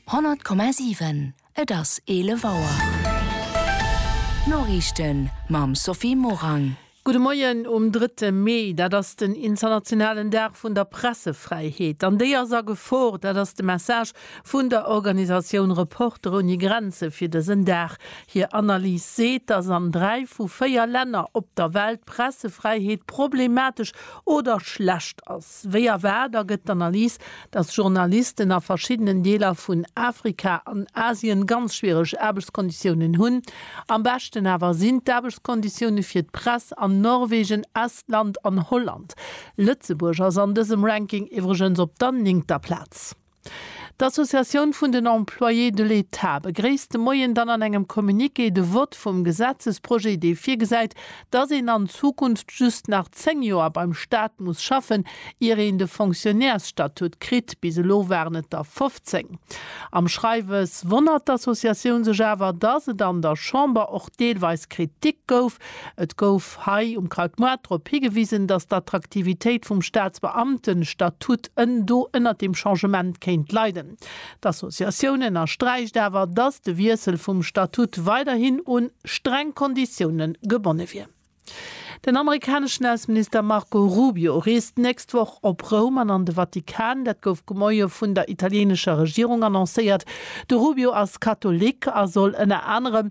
100,7 Et ass 11 Auer. D'Noriichten mam Sophie Morang. Gudde Moien um drëtte Mee. Dat ass den internationalen Dag vun der Pressefräiheet. An déi ass a Gefor. Dat ass de Message vun der Organisatioun Reporter ouni Grenze fir dësen Dag. Hir Analys seet, datt an dräi vu véier Länner op der Welt d'Pressefräiheet problematesch oder schlecht ass. Wéi erwaart ergëtt d'Analys, datt Journalisten a verschiddenen Deeler vun Afrika an Asien ganz schwiereg Aarbechtskonditiounen hunn. Am beschten awer sinn d'Aarbechtskonditioune fir d'Press an Norwegen, Estland an Holland. Lëtzebuerg ass an dësem Ranking iwwregens op der néngter Plaz. D'Associatioun vun den Employés de l'État begréisst de Moien dann an engem Communiqué de Vott vum Gesetzesprojet, dee virgesäit, dass een an Zukunft just nach 10 Joer beim Staat muss schaffen, ier een de Fonctionnairsstatut kritt, bis elo waren et der 15. Am Schreiwes wonnert d'Associatioun sech awer, dass et an der Chamber och deelweis Kritik gouf, Et gouf hei um Kraut Moart drop higewisen, datt d'Attraktivitéit vum Staatsbeamtenstatut ën do ënnert deem Changement kéint leiden. D'Associatioun ënnersträicht awer, datt de Wiessel vum Statut weiderhin un streng Konditioune gebonne wier. Den amerikaneschen Ausseminister Marco Rubio reest d'nächst Woch op Roum an an de Vatikan. Dat gouf gemoie vun der italienescher Regierung annoncéiert. De Rubio ass Katholik a soll ënner anerem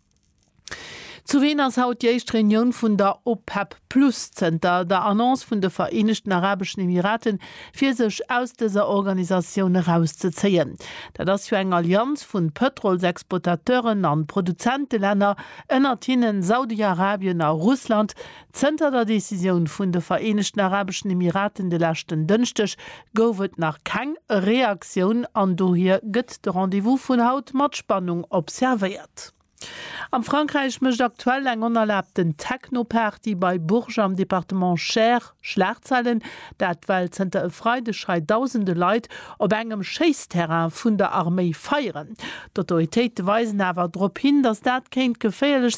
Zu Wien ass haut déi éischt Reunioun vun der OPEP Plus zënter der Annonce vun de Vereenegten Arabeschen Emirate fir sech aus dëser Organisatioun erauszezéien. Dat ass jo eng Allianz vun Pëtrolsexploitateuren an Produzentelänner, ënnert hinnen Saudi-Arabien a Russland, Zënter der Decisioun vun de Vereenegten Arabeschen Emiraten de leschten Dënschdeg gouf et nach keng Reaktioun an dohier gëtt de Rendez-vous vun haut mat Spannung observéiert. Am Frankräich mécht aktuell eng onerlaabten Techno-Party bei Bourges am Departement Cher Schlagzeilen, dat well zënter e Freideg hei dausende Leit op engem Schéissterrain vun der Arméi feieren. D'Autoritéite weisen awer drop hin, datt dat kéint geféierlech